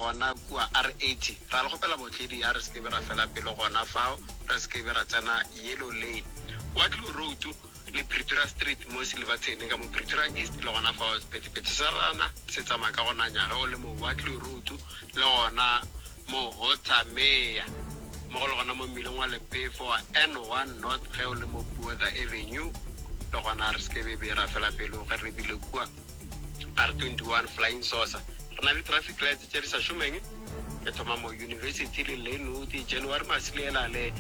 Gona kua R80, ra le kgopela bootledi ya re se ke be ra fela pelo gona fao, re se ke be ra tsena Yellow Lane, Waterloo Road le Pretoria Street mo Silverton ka mo Pretoria East, le gona fao sephethephethe sa rana se tsamaya ka go nanya ge o le mo Waterloo Road le gona mo Hotsamea, mmogo le gona mo mmileng wa lepefo wa N1 North ge o le mo Buodha Avenue, le gona re se ke be be ra fela pelo ge re lebile kua. R21 Flying Saucer, Re na le traffic lights tše di sa šomeng, e thoma mo University le Lynnwood, January Masili e na le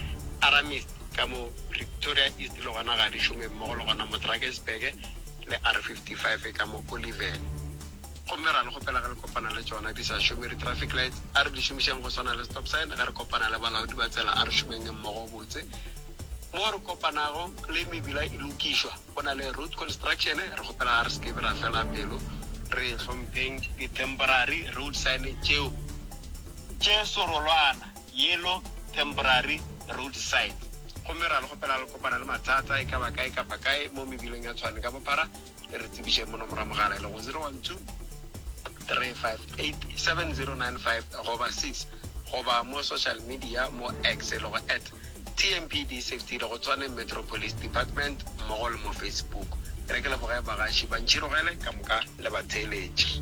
Aramist ka mo Pretoria East le gona ga di šome mmogo le gona mo Drakensberg le R55 ka mo Oliven. Gomme ra le kgopela ge le kopana le tšona di sa šome di traffic lights, a re di šomišeng go swana le stop sign ge re kopana le balaodi ba tsela, a re šomeng mmogo botse mo re kopanago le mebila e lokišwa. Go na le road construction, re kgopela re se ke be ra fela pelo, re hlompheng di temporary road sign tšeo tše serolwana, yellow temporary road sign. Gomme ra le kgopela le kopana le mathata e ka ba kae kapa kae mo mebileng ya Tshwane ka bophara, le re tsebišeng mo nomoro ya mogala e lego 0123587095 goba 6 goba mo social media mo X e lego at. TMPD Safety le go Tshwane Metro Police Department mmogo le mo Facebook. Ke re ke leboge bagaši ba ntšhirogele ka moka le batheeletši.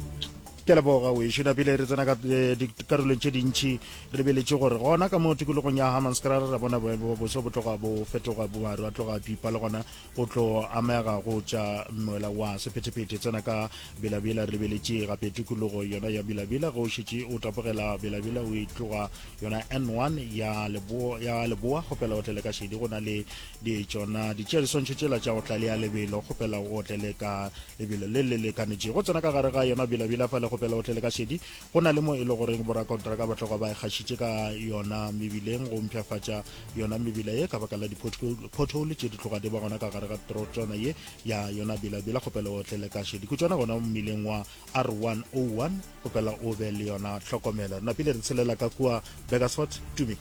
Ke a leboga wešo na pele re tsena ka eh, dikarolong tše dintšhi re lebeletše gore gona ka mo tikologong ya hammanskraal ra bona boemo ba boso bo tloga bo fetoga bo maru a tloga a pipa le gona o tlo amega go tša moela wa sephetephete tsena ka bilabila re lebeletše gape tikologo yona ya bilabila ge o šetše o tapogela bilabila o e tloga yona n1 ya leboa, ya leboa kgopela o tlele ka šedi go na le di tšona di tšea diswantšho tšela tša go tlalea lebelo kgopela o tlele ka lebelo le le lekanetšego tsena ka gare ga yona bilabila fa le kgopela o tlele ka šedi Go na le mo e le goreng borakontraka ba tloga ba ikgašitše ka yona mebileng go mpshafatša yona mebila ye ka baka la di-pothole tše di tloga di ba gona ka gare ga trotšwana ye ya yona bilabila go pela o tlele kaše dikutšwana gona mmileng wa R101 go pela o be le yona tlhokomelo. Re napile re tshelela ka kua Burgersfort, Tumi.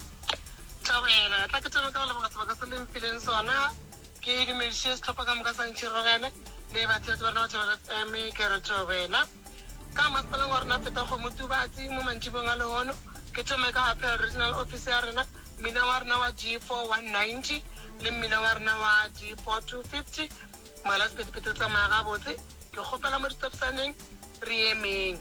Thobela, tla ke thome ka go leboga sebaka se le mphileng sona. Ke dumediše sehlopha ka moka sa Ntšhirogele le batheetsi ba rena ba Thobela FM, ke re thobela. Ka masepaleng wa rena Phethagomotubatsi mo mantšibong a lehono, ke thome ka Appeal Regional Office ya rena, mmina wa rena wa G4190 le mmina wa rena wa G4250. Moela sephethephethe o tsamaya gabotse. Ke kgopela mo ditopsaneng re emeng.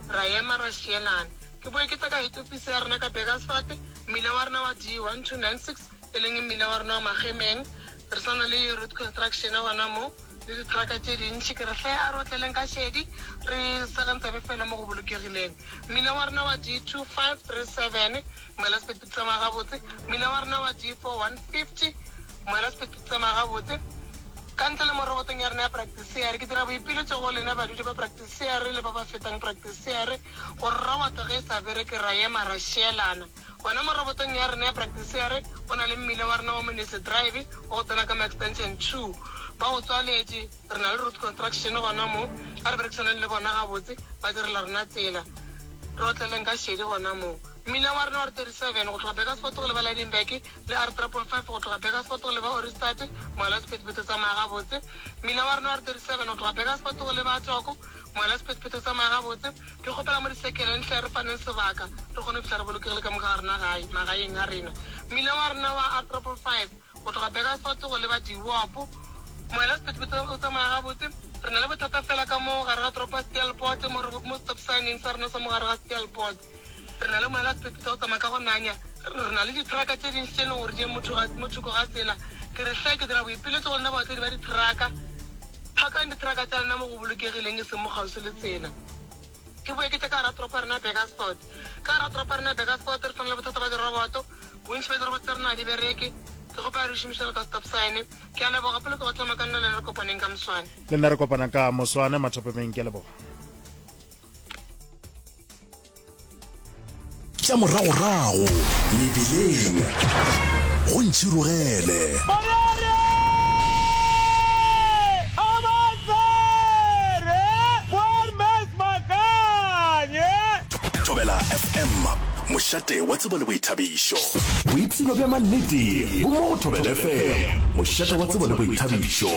Ra ema ra šielana. Ke boe ke tle ka Head Office ya rena ka Burgersfort, mmina wa rena wa D1296. e leng mmila wa rena wa Magemeng, re sa na le road construction gona mo le diteraka tše dintši, ke re hle a re otleleng ka šedi re sa ka ntsabe fela mo go bolokegileng. Mmila wa rena wa D2537, moela sephetho tsamaya gabotse, mmila wa rena wa D4150, moela sephetho tsamaya gabotse. Ka ntle le mo robotong ya rena ya Praktisiare, ke dira boipiletšo go lena badudi ba Praktisiare le ba ba fetang Praktisiare gore roboto ge e sa bereke ra ema ra šielana. Gona mo robotong ya rena ya Praktisiare go na le mmila wa rena wa Monese Drive wa go tsena ka mo Extension two. Ba go tswaletše, re na le Ruth Construction gona mo. A re berekisaneng le bona gabotse, ba direla rena tsela. Re otleleng ka šedi gona mo. Mmila wa rena wa R37 go tloga Burgersfort go leba Lydenburg le R3.5 go tloga Burgersfort go leba Ohrigstadt, Moala wa Sephethephethe o tsamaya gabotse. Mmila wa rena wa R37 go tloga Burgersfort go leba Atoko Ngwana Sephethephethe, tsamaya gabotse. Ke kgopela mo disekele nhle re faneng sebaka re kgone go fihla re bolokegile ka moka ga rena gae, magaeng a rena. Mmila wa rena wa R triple five go tloga Burgersfort go leba Diwop. Ngwana Sephethephethe, o tsamaya gabotse. Re na le bothata fela ka mo gare ga toropo ya Steelpoort mo re, mo stop sign-eng sa rena sa mo gare ga Steelpoort. Re na le moela sepeto o tsamaya ka go nanya. Re na le ditheraka tše dintši tše e lego gore di eme mo thoko ga tsela. Ke re, Hle, ke dira boipiletšo go lena baotledi ba ditheraka, Phakang ditheraka tša lena mo go bolokegileng e seng mo kgauswi le tsela. Ke boe ke tle ka gare ga toropo ya rena ya Burgersfort. Ka gare ga toropo ya rena ya Burgersfort re fana le bothata ba diroboto. Bontši bja diroboto tša rena ga di bereke. Ke kgopela re di šomiše jalo ka stop sign. Ke a leboga, gape le tlogo tlama ka nna le yena re kopaneng ka moswane. Le nna re kopana ka moswane, Mathopemeng. Ke a leboga. tša moragorago mebileng go ntšhirogele thobela fm mošate wa tsebo le boithabišo boipshino bja mannete bo mo go thobela fm mošate wa tsebo le boithabišo